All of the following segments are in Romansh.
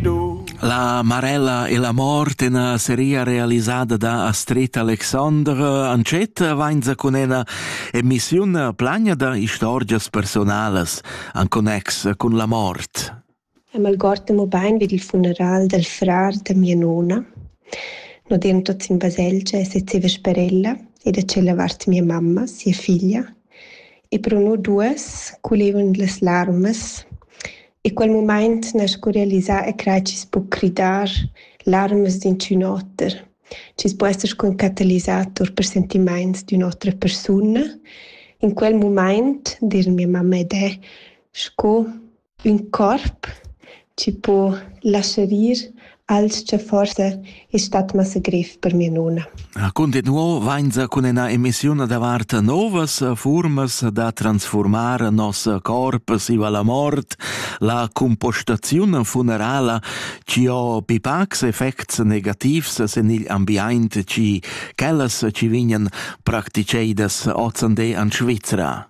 La Marella e la mort ena seria realisada da Astrid Alexandre Ancetta vainza cun ena emissiun plagna da istorgias personalas an connex cun la mort. Eu m'algord mo bain vid il funeral dal frar da mia nona. No demo tots in baselgia e sezeva sper ella e da cella vart mia mamma, sia figlia E Bruno duess, culivend las larmas, in quel mumaint ner sco realisà e crai chi's po cridar larmas d'inchün oter, chi's po esser sco ün catalisator per sentimaints d'ün'otra persuna. In quel mumaint, dir mia mamma ed e, sco Ün corp chi po laschar ir als cha forsa es stat massa grev per mia nona. Cuntinuo vainsa cun üna emissiun davart novas fuormas da transfuormar nos corp siva la mort, la cumpostaziun funerala chi ho pipacs effects negativs sen igl ambiaint chi quellas chi vignan practiceidas ozande an Svizra.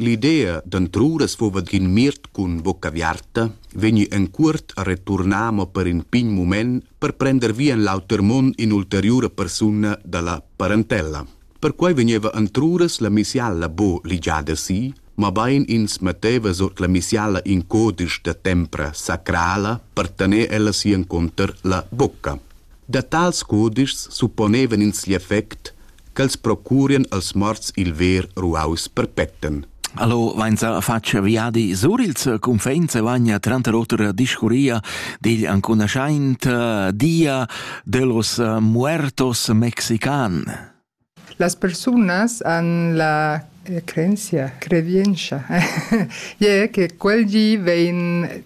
L'idea d'antruras fuva d'in miert cun vucca aviarta vegni en cuort a returnar mo per in pign mument per prender via en l'auter mund in'ulteriura persuna dalla parentella. Perquei vegneva antruras la missiala bo ligiada si, mabain ins metteva sot la missiala in codice da tempra sacrala per tener ella si enconter la bocca. Da tals codices supponevan ins l'effect ch'els procurien als morts il ver ruaus perpetten. Allo vainsa faccia viadi sur il circumfens e vagna tranter otra discuria digl ancunaschaint eh, dia dellos eh, muertos mexican. Las personas han la eh, creencia, credienza, e che quel di vein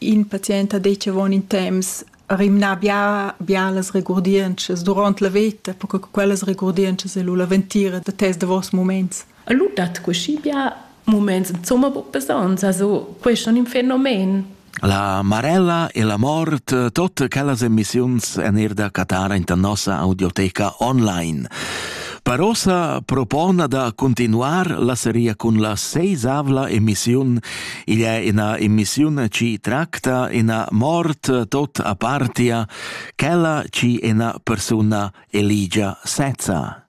In patient ha detg avon in temps rimnar bia bialas regurdientschas duront la veta, per che quellas regurdientschas e lu la ventira da tes davos muments. E lu dat cuschi bia muments insomma buc besonns, also questo è un fenomen. La marella e la mort, tutte quelle emissioni en er da Qatar in nostra audioteca online. Per ossa propona da continuar la seria con la seisavla emissione Igl è ina emissiun chi tracta ina mort tot apartia, quella chi ina persuna eligia sezza.